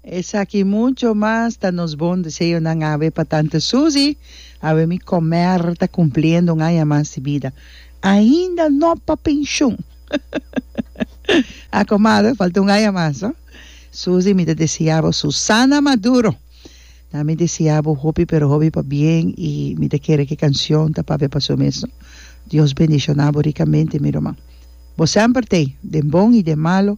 Esaki i mucho mas ta nos bon deseonan awe pa tante Susi, awe mi comer ta cumpliendo un aña mas di bida, ainda no pa pension a comadre falta un aña mas no Susi mi ta desea bo Susana Maduro na mi desea bo hopi pero hopi pa bien i mi ta kere ki cancion ta papia pa su mes no Dios bendiciona bo ricamente mi ruman bo semper t'ei den bon i den malo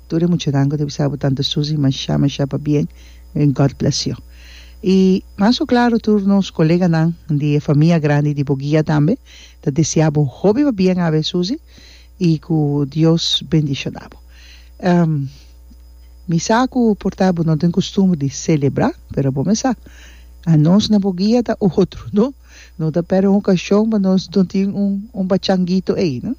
Tur e muchanan cu ta bisa bo tanta Susie masha masha pa bien en God bless you y mas cu claro tur nos coleganan di e famia grandi di Boguia tambe ta desea bo hopi pa bien awe Susie y cu Dios bendicionabo mi sa cu por ta bo no tin costumbre di celebra pero bo me sa anos na Boguia ta otro no no ta pera un ocasion pa nos no tin un un pachangito ey no.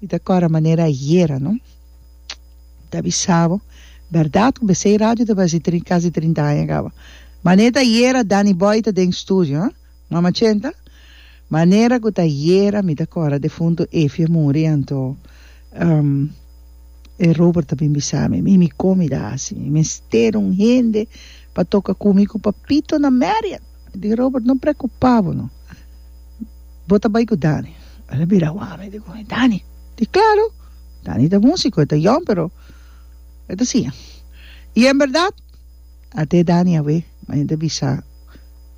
Mi ta kòrda manera ayera no ta bisa bo, bèrdat ku B'Sei Radio ta basi trin kasi trinta aña kaba. Mane ta ayera Danny Boy ta den studio ha Mama Chenta? Manera ku ta ayera mi ta kòrda defuntu Efie a muri anto e Robert a bin bisa mi, Mimi kon mi ta hasi? Mi mester un hende pa toka ku mi ku Papito na Marian. Di Robert, no preocupa bo no. Bo ta bay cu Danny. El a bira wami di con e Danny. Di claro, Danny ta musico, e ta yong pero e ta siña. Y en berdad, a te Danny a we mi a yenta bisa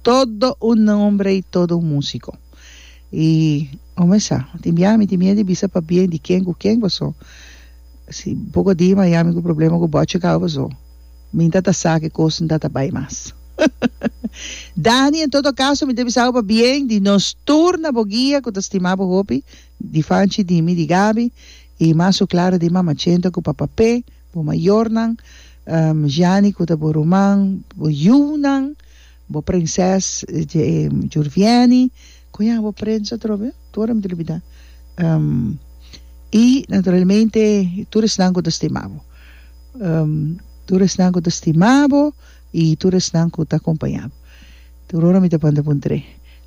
todo un nombre y todo un musico. Y ome sa, tin bia mi tin miedu di bisa pabien di ken cu ken paso si poco di Miami cu problema cu Butch a caba paso. Mi ta ta sa ke kos N ta ta bai mas. Dani, En todo kaso, mi ta bisa bo pa bien di nos tur na bo guia ku ta stima bo hopi, di Fanchi, di mi, di Gabi, i mas su klara di Mama Chenta ku Papa Pe, bo mayornan, Jani ku ta bo ruman, bo yunan, bo prinses Jurvieni, Con ya bo prensa atrobe tur a mitilu bida y naturalmente tur esnan cu ta stima bo tur esnan cu ta stima bo y tur esnan cu ta acompaña bo tur ora mi ta panda pun tren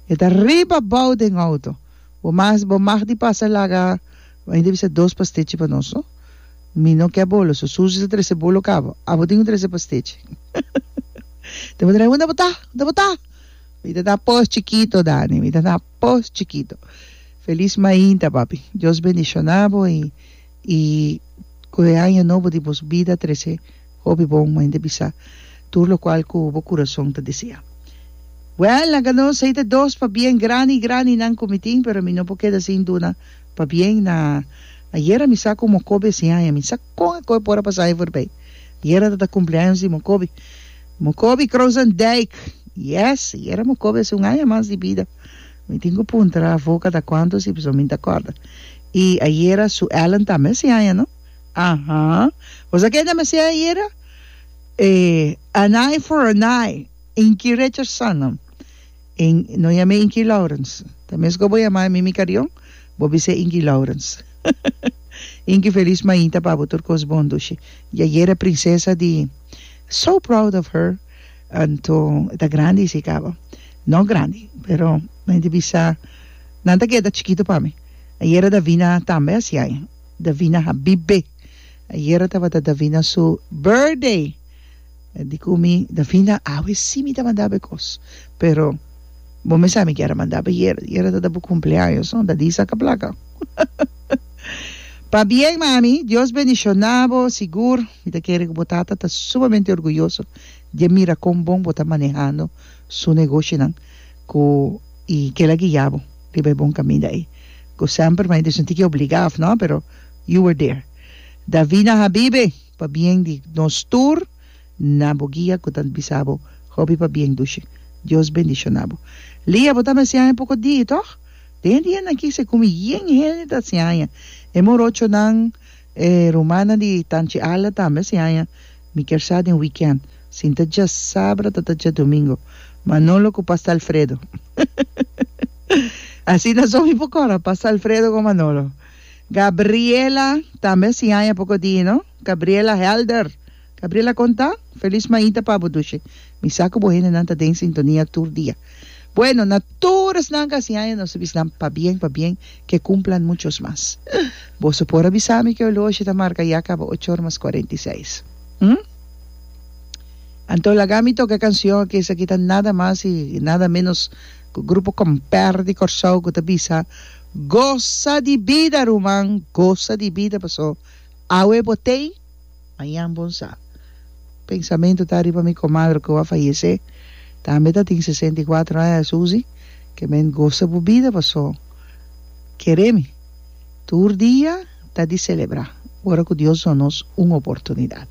e ta riba abao den auto bo mas bo mag di pasa laga mi ta bisa dos pastechi pa nos mi no ke bolo so Susi ta trece bolo caba abo tin un trece pastechi ta pregunta unda bo ta unda bo ta Mi ta ta pos chikito Dani mi ta ta pos chikito felis mainta papi Dios bendiciona bo y y cu e año nobo di bos bida trece hopi bon mainta bisa tur lo cual cu bo curason ta desea well nan cano esey ta dos pa bien grandi grandi nan cu mi tin pero mi no por keda sin duna pa bien na ayera mi sa cu mocobi e siaña mi sa con a coe por a pasa aña forbey ayera ta ta cumpleaños di mocobi. Mokobi Kroosendijk, Yes, yera mokobi hasi un aña mas di bida. Mi tin ku puntra avo kata kuantu si pasobra mi no ta kòrda. I ayera su Ellen tambe hasi aña, no? Aha. Bo sa kende mi hasi ayera? E an eye for an eye, Inky Richardson no. I no yam'é Inky Lourens. Ta meskos bo yam'é Mimi Carrion, bo bis'é Inky Lourens. Inky, felis mainta pa bo tur kos bon, dushi. Di ayera prinsesa di. So proud of her anto e ta grandi si caba no grandi pero mi ta bisa nan ta keda chikito pa mi ayera Davina tambe a siai Davina habibe ayera tabata Davina su birthday di cu mi Davina awe si mi ta manda bo e cos pero bo mi sa mi kier a manda bo yera yera ta ta bo cumpleaños no ta di saca placa pa bien mami Dios bendiciona bo sigur. Mi ta kere ku bo tata ta sumamente orguyoso di e mira kon bon bo ta manehando su negoshinan ku i kel a guia bo riba e bon kaminda ei ku semper mai disonti ke obligá òf nò pero you were there. Davina Habibe, pabien di nos tur na bo guia ku ta bisa bo hopi pabien dushi. Dios bendishoná bo. Lia, bo ta mi a siaña poko di, tòg? Den e dianan aki se kume yen hende ta siaña e morochonan. E rumannan di Tanchi Ala tambe si haña mi kier sa den weekend sin ta dja sabra ta ta dja domingo Manolo ku Pasta Alfredo asina so mi por kora Pasta Alfredo ku Manolo Gabriela tambe si haña poko di no Gabriela Helder. Gabriel a konta, Felis maita pa bo Dushe. Mi sa ku bo hendenan ta den sintonia tur dia. Bueno, na tur esnan ka hasi haña nos ta bisa nan pabien, pabien, ke kumplan muchos mas. Boso por a bisa mi ke olorshe ta marka ya kaba ocho or mas kuarenta i seis. Hm? Anto laga mi toka e kanshon ke esaki ta nada mas i nada menos ku Grupo Comper di Kòrsou ku ta bisa, Gosa di bida ruman, gosa di bida paso awe bo tei. Mañan bon sa. Pensamentu ta riba mi komadre ku a fayesé, tambe ta tin sesenta i kuatro aña, Susi, ke men gosa bo bida paso kere mi. Tur dia ta di selebrá ora ku Dios duna nos un oportunidat.